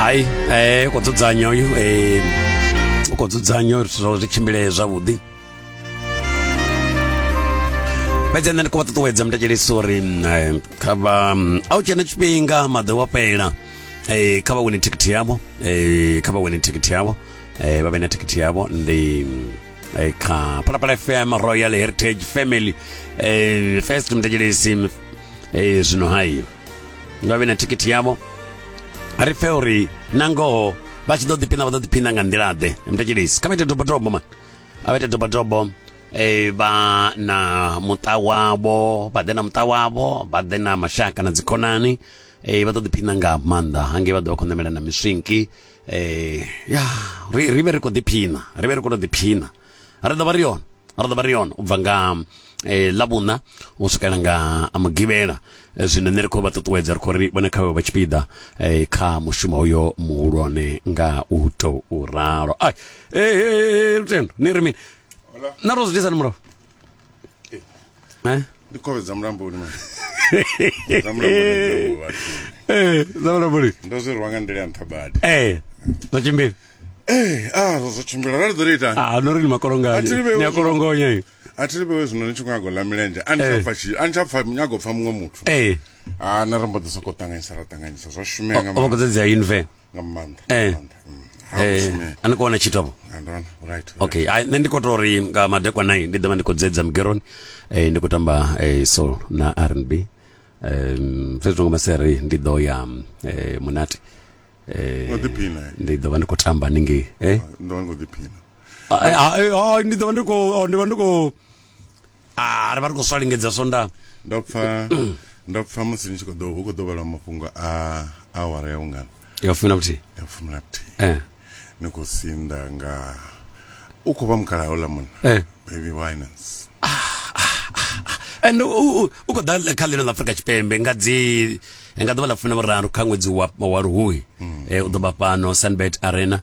hai um kho dzudzanya uyu um u khou dzudzanya uri zwithu zwi tshimbilee zwavhuḓi fhedzi nṋe ndi khou vha ṱuṱuwedza muthetshelesi uri kha vha a u tshena tshifhinga maḓi wa fhela um kha vha wine thikhithi yavho um kha vha wine thikhithi yavho um vha vhe na thikhithi yavho ndi kha phalaphala fm royal heritage family um first muthetshelesi um zwino hayo nga vhe na thikhithi yavho ri pfe uri na ngoho vha tshi ḓo ḓiphina vha ḓo ḓiphina nga nḓila-ḓe mthetshelisi kha vha ite dobodobo mani a vha ite dobodobo eh vha na muṱa wavho vha ḓe na muṱa wavho vha ḓe na mashaka na dzikhonani eh vha ḓo ḓiphina nga maanḓa hangei vha ḓo vha khou ṋamela na miswinki eh ya ri vhe ri khou ḓiphina ri vhe ri khou tou ḓiphina ri ḓo vha ri hone ri ḓo vha ri hone u bva nga eh, ḽavhuṋa u swikela nga mugivhela Eh, zwino nṋe ri khou vha ṱuṱuwedza ri khou ri vhone kha vhe vha tshipiḓa eh, kha mushumo uyo muhulwane nga u tou ralo ai eh, eh, eh, lutendo ni ri mini na ro zwi disani murahu eh? ndi khovhe dza mulamboni dza mulamboni eh, dza mulamboni ndo zwi rwa nga nḓila ya nṱha badi eh, dzo tshimbila Eh, ah, zwo tshimbila rali ḓo ita. Ah, no ri ni makolonganya. Ni akolongonya iyo. A thi vhe zwino ni tshi khou gola milenzhe. A ni tsha eh. pfa tshi, a ni tsha pfa nyago pfa muṅwe muthu. Eh. Ah, na ri mbo ḓi soko ṱanganyisa ra ṱanganyisa zwa shumela nga. O vha kho dza dzi ya inve. nga maanḓa nga Eh. maanḓa Mm. Ha eh, mushumi. a ni khou wana tshithu avho Ah, ndona right okay ai, nṋe ndi khou tou ri nga madekwa nai ndi ḓovha ndi khou dzedza mugeroni eh, ndi khou tamba eh, soul na rnb um, fhedzi nga maseri ndi ḓo ya eh, munati eh, Ngo ḓiphina, eh? ndi ḓovha ndi khou tamba ningei eh? ndona ngo ḓiphina Ah, eh, ah, eh, ah, ndi ḓovha ndi khou oh, ndi vha ndi khou ah, ri vha ri khou swa lingedza swondaha ndo pfa ndo pfa musi ni tshi khou ḓo hu khou ḓo vhala mafhungo a awara ya vhungana ya fumi na vhuthihi ya fumi na vhuthihi eh. ni khou sinda nga u khou vha mukala houḽa munna eh. baby winans and u khou ḓa kha ḽino ḽa afrika tshipembe nga dzi nga ḓuvha ḽa fumi na vhuraru kha ṅwedzi wa luhuhi hmm. eh, u ḓo vha fhano sunbet arena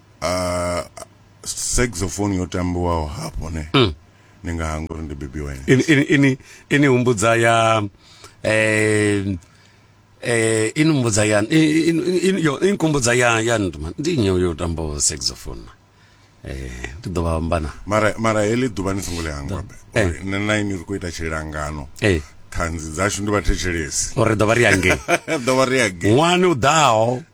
uh, saxophone yo tambiwaho hafho ne mm. ni nga hanga uri ndi baby wine ini, ini, ini, ini humbudza ya eh, eh, ini humbudza ya ini kumbudza ya ya nduma ndi nyo yo tambo saxophone eh ndi ḓo vha ambana mara mara heḽi ḓuvha ni songo ḽi hangwa be eh. nṋe na ini ri khou ita tshilangano eh ṱhanzi dzashu ndi vhathetshelesi uri ḓo vha ri angei ḓo vha ri angei ṅwani u ḓaho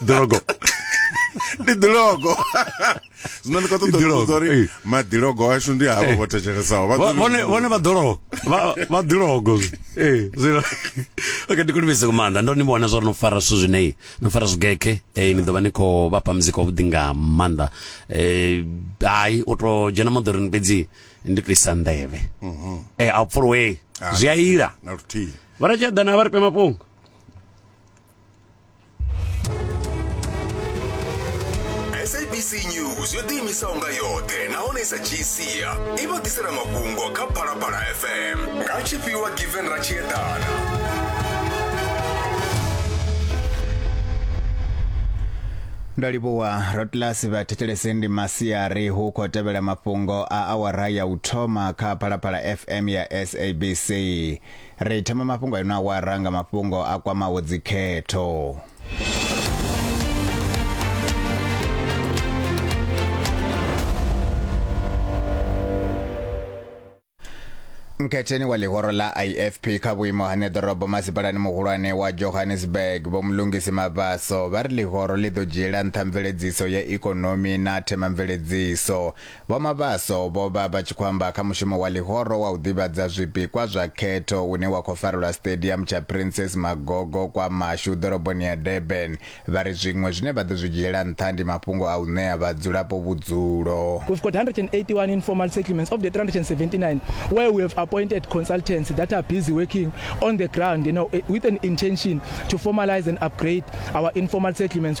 Drogo. ndi ḓilogo zwino ndi khou ṱoḓa Ḓilogo, ḓilogo uri eh. maḓilogo ashu ndi havho vho thetshelesao Vha- Vha- vhone vhone vha ḓologo Vha- vha ḓilogo ee zwino okay ndi kulumese ku maanḓa ndo ni vhona zwa uri no fara zwithu zwine no fara zwigeke eh ni ḓo vha ni khou vhafha muzika wavhuḓi nga maanḓa eh hayi u to dzhena moḓoroni fhedzi ndi to isa nḓevhe eh a pfuluwe zwi a ila na luthihi vha ri tshi eḓana vha ri pe mafhungo sabc news yo ḓiimisaho nga yoṱhe nahone sa gcia i vha ḓisela mafhungo kha phalaphala fm nga tshifhiwa given ra tshi eḓana ndo livhuwa rotlas vha thetshelese ndi masiari hu khou tevhela mafhungo a awara ya u thoma kha phalaphala fm ya sabc Ri thoma mafhungo a ino awara nga mafhungo a kwamaho dzikhetho. nkhetheni wa ḽihoro ḽa ifp kha vhuimo ha neḓorobo masipalani muhulwane wa johannesburg vho mulungisi mavaso vha ri ḽihoro ḽi ḓo dzhiela nṱha mveledziso ya ikonomi na themamveledziso Vho Mabaso vho vha vha tshi khou amba kha mushumo wa ḽihoro wa u ḓivhadza zwipikwa zwa khetho une wa khou farelwa Stadium tsha Princess Magogo kwa Mashu ḓoroboni ya Durban. Vha ri zwiṅwe zwine vha ḓo zwi dzhiela nṱha ndi mafhungo a u ṋea vhadzulapo vhudzulo. We've got 181 informal settlements of the 379 where we have appointed consultants that are busy working on the ground you know, with an intention to formalise and upgrade our informal settlements.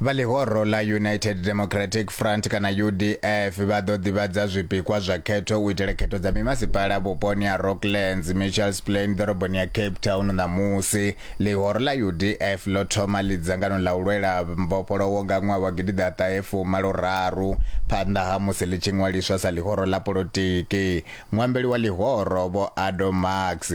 Vha ḽihoro ḽa United Democratic Front kana UDF vha ḓo ḓivhadza zwipikwa zwa khetho u itela khetho dza mimasipala vhuponi ha Rocklands, Mitchells Plain ḓoroboni ya Cape Town ṋamusi. Ḽihoro ḽa UDF ḽo thoma ḽi dzangano ḽa u lwela mbofholowo nga ṅwaha wa gidi ḓa ṱahe fumalo raru phanḓa ha musi ḽi tshi ṅwaliswa sa ḽihoro ḽa polotiki. Muambeli wa ḽihoro Vho Ado Marx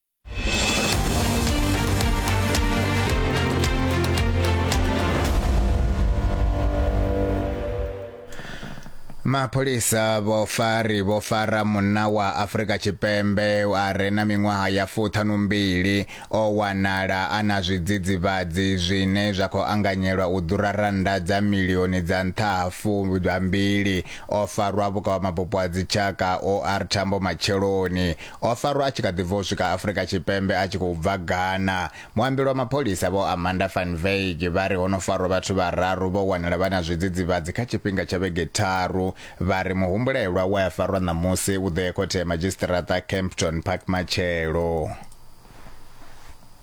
mapholisa vho fari vho fara munna wa Afrika Tshipembe a re na miṅwaha ya fuṱhanu mbili o wanala a na zwidzidzivhadzi zwine zwa khou anganyelwa u ḓura rannda dza milioni dza nṱha ha fumbili o farwa vhukavhamabupo ha dzitshaka OR Tambo matsheloni O farwa a tshi kha ḓi bva u swika Afrika Tshipembe a tshi khou bva Ghana. Muambeli wa mapholisa Vho Amanda van Wyk vha ri ho no farwa vhathu vhararu vho wanala vha na zwidzidzivhadzi kha tshifhinga tsha vhege tharu. Vha ri muhumbulelwa we a farwa ṋamusi u ḓo ya khothe ya madzhisiṱiraṱa Kempton Park matshelo.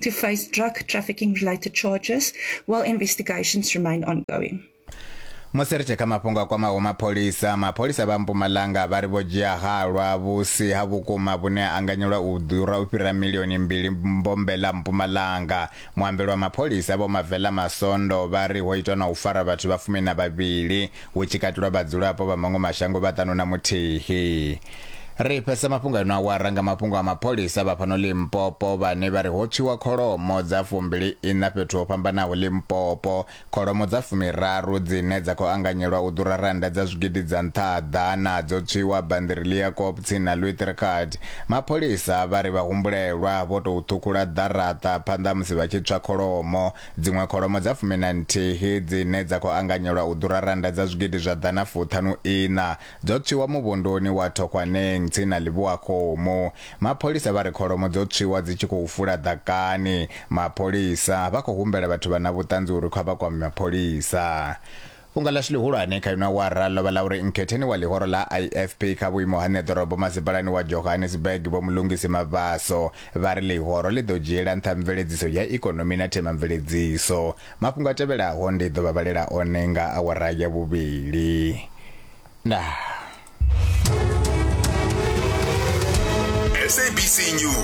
to face drug trafficking related charges while investigations remain ongoing. musi ri tshi kha mafhungo a kwamaho mapholisa mapholisa vha mpumalanga vha ri vho dzhia halwa vhusi ha vhukuma vhune ha anganyelwa u ḓura u fhira milioni mbili mbombe ḽa mpumalanga muambeli wa mapholisa vho mavela masondo vha ri ho itwa na u fara vhathu vha fumi na vhavhili hu tshi katelwa vhadzulapo vha maṅwe mashango vha ṱanu na muthihi. Ri fhesa mafhungo ano awara nga mafhungo a mapholisa vha fhano Limpopo vhane vha ri ho tswiwa kholomo dza fumbili iṋa fhethu ho fhambanaho Limpopo, kholomo dza fumiraru dzine dza khou anganyelwa u ḓura rannda dza zwigidi dza nṱha ha ḓana dzo tswiwa Bandiri Leeuwkop tsini na Luithricard. Mapholisa vha ri vhahumbulelwa vho tou ṱhukhula ḓaraṱa phanḓa ha musi vha tshi tswa kholomo. Dziṅwe kholomo dza fumi na nthihi dzine dza khou anganyelwa u ḓura rannda dza zwigidi zwa ḓana fuṱhanu iṋa dzo tswiwa muvhunduni wa Thokgwaneng tsini na Lebohakgomo. Mapholisa vha ri kholomo dzo tswiwa dzi tshi khou fula ḓakani. Mapholisa vha khou humbela vhathu vha na vhuṱanzi uri kha vha kwame mapholisa. Fhungo ḽashu ḽihulwane kha ino awara ḽo vha ḽa uri Nkhetheni wa ḽihoro ḽa IFP kha vhuimo ha ṋeḓorobo masipalani wa Johannesburg Vho Mlungisi Mabaso vha ri ḽihoro ḽi ḓo dzhiela nṱha mveledziso ya ikonomi na themamveledziso. Mafhungo a tevhelaho ndi ḓo vha vhalela one nga awara ya vhuvhili. Ndaa. SABC News.